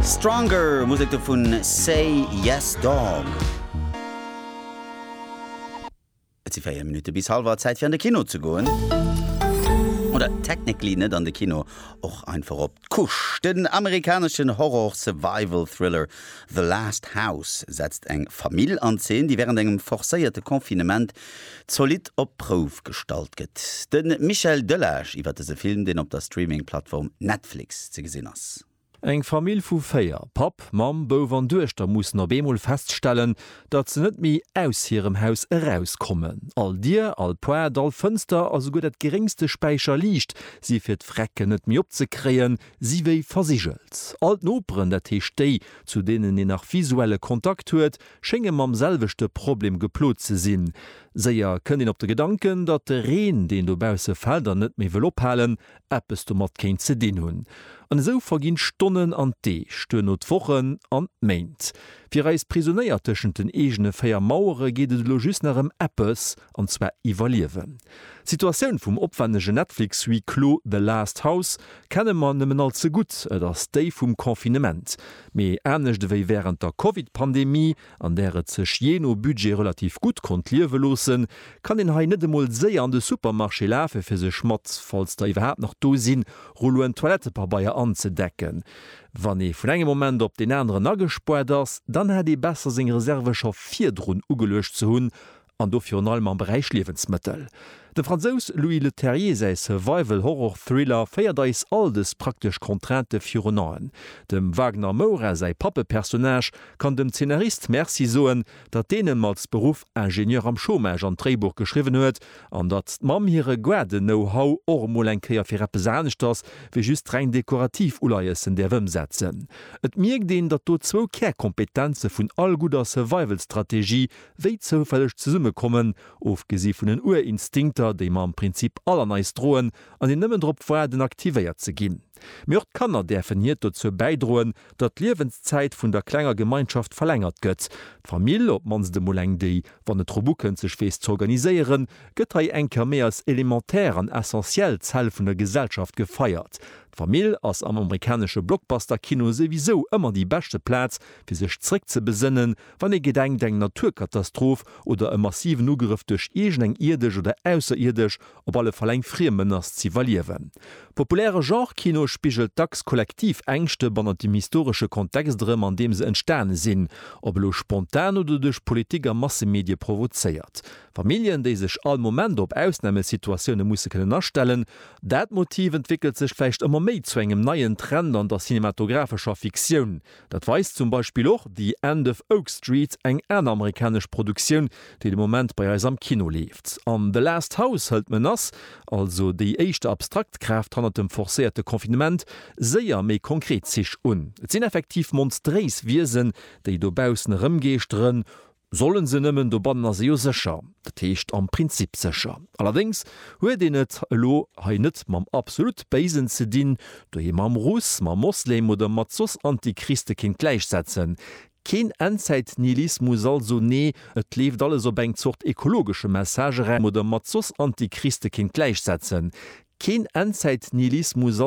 Stronger, Musek do vun Say Yes Dog. Et si 4 Minutte bis halwer, Zäit fir an de Kino ze goen. Oder technically net an de Kino, och einfach op d'Couche. Den amerikaneschen Horror-Survival-Thriller The Last House setzt eng Famill an Zeen, déi wärend engem forcéierte Confinement zolidd op d'Prouf gestallt gëtt. De Michel Delage iwwer dëse Film, deen op der Streaming-Plattform Netflix ze gesinn ass. Eng Famill vu véier, Papp, Mamm, Bouf an Duechter, mussen op eemol feststellen, datt se net méi aus hirem Haus erauskommen. All Dier, all Poart, all Fënster a souguer dat geréngste Späicherliicht si fir d'Vrecken net méi opzekréien, si wéi versigelt. All d'Noperen, dat heescht déi, zu deenen een nach visuelle Kontakt huet, schénge mam selwechte Problem geplot ze sinn. Séier kënnt een op de Gedanken, datt de Reen, deen dobausse fält an net méi wëll ophalen, eppes domat kéint ze dinn hunn. An esou verginn d'Stonnen an d'Deeg, duerno d'Wochen an d'Méint. Fir eis Prisonéier tëschent den eegene véier Mauere geet et elo just nach ëm eppes, an zwar iwwerliewen. D'Situatioun vum opwennegen Netflix-Huis clos The Last House kenne mer nëmmen all ze gutt, et ass déi vum Confinement, mee anescht ewéi wärend der Covid-Pandemie, an där et sech jee no Budget relativ gutt konnt liewe loossen, kann een hei net emol séier an de Supermarché lafe fir sech mat, falls der iwwerhaapt nach do sinn, Rulloen Toilettepabeier anzedecken. Wann ee vun engem Moment op deen aneren agespuart ass, dann hätt ee besser seng Reserve scho virdrun ugeluecht ze hunn, an do virun allem am Beräich Liewensmëttel. Dem Fransous Louis Leterrier säi Survival-Horror-Thriller féiert eis all dës praktesch Contraintë virun Aen. Dem Wagner Moura säi Pappepersonnage kann dem Zeenarist Merci soen, datt deen em als Beruff Ingenieur am Chômage an d'Dréibuch geschriwwen huet, an datt d'Mamm hire Guarde-Know-How och emol eng Kéier fir eppes anescht ass wéi just reng dekorativ Uleiëssen däerf ëmsetzen. Et mierkt een, datt do zwou Kärkompetenze vun all gudder Survival-Strategie wéi zoufälleg zesumme kommen, ofgesi vun den Urinstinkter, déi mer am Prinzip all an eis droen an déi nëmmen drop waarden, aktivéiert ze ginn. Mee och d'Kanner däerfen hiert dozou bäidroen, datt d'Liewenszäit vun der klenger Gemeinschaft verlängert gëtt. D'Famill, op d'mannst emol eng, déi, wann et drop ukënnt, sech weess z'organiséieren, gëtt hei eng Kéier méi als elementär an essentiell Zell vun der Gesellschaft gefeiert. D'Famill ass am amerikanesche Blockbuster-Kino souwisou ëmmer déi beschte Plaz, fir sech zréckzebesënnen, Wann ee gedenkt, eng Naturkatastroph oder e massiven Ugrëff duerch iergend eng ierdesch oder ausserierdesch, op alle Fall eng friem Menace ze iwwerliewen. Populäre Genre-Kino spigelt dacks kollektiv Ängschte bannent dem historesche Kontext erëm, an deem se entstane sinn, ob elo spontan oder duerch Politik a Massemedie provozéiert. Familljen, déi sech all Moment op Ausnamesituatioune musse kënnen astellen. Dat Motiv entwéckelt sech vläicht ëmmer méi zu engem neien Trend an der cinematographescher Fiktioun, Dat weist zum Beispill och The End of Oak Street, eng aner amerikanesch Produktioun, déi de Moment bei eis am Kino leeft. An The Last House hëlt d'Menace, also déi éischt abstrakt Kraaft hannert dem forcéierte Confinement, séier méi konkret Zich un. Et sinn effektiv monstréis Wiesen, déi dobaussen erëmgeeschteren. Sollen se nëmmen, dobannen ass ee jo sécher, dat heescht am Prinzip sécher. Allerdéngs huet een et elo hei net mam absolut Béisen ze dinn, dohier mam Russ, mam Moslem oder mat soss Antichriste kéint gläichsetzen. Keen Endzäit-Nihilismus also, nee, et leeft alles op eng Zort ekologesche Message era, oder mat soss Antichriste kéint gläichsetzen. Keen Endzäit-Nihilismus also.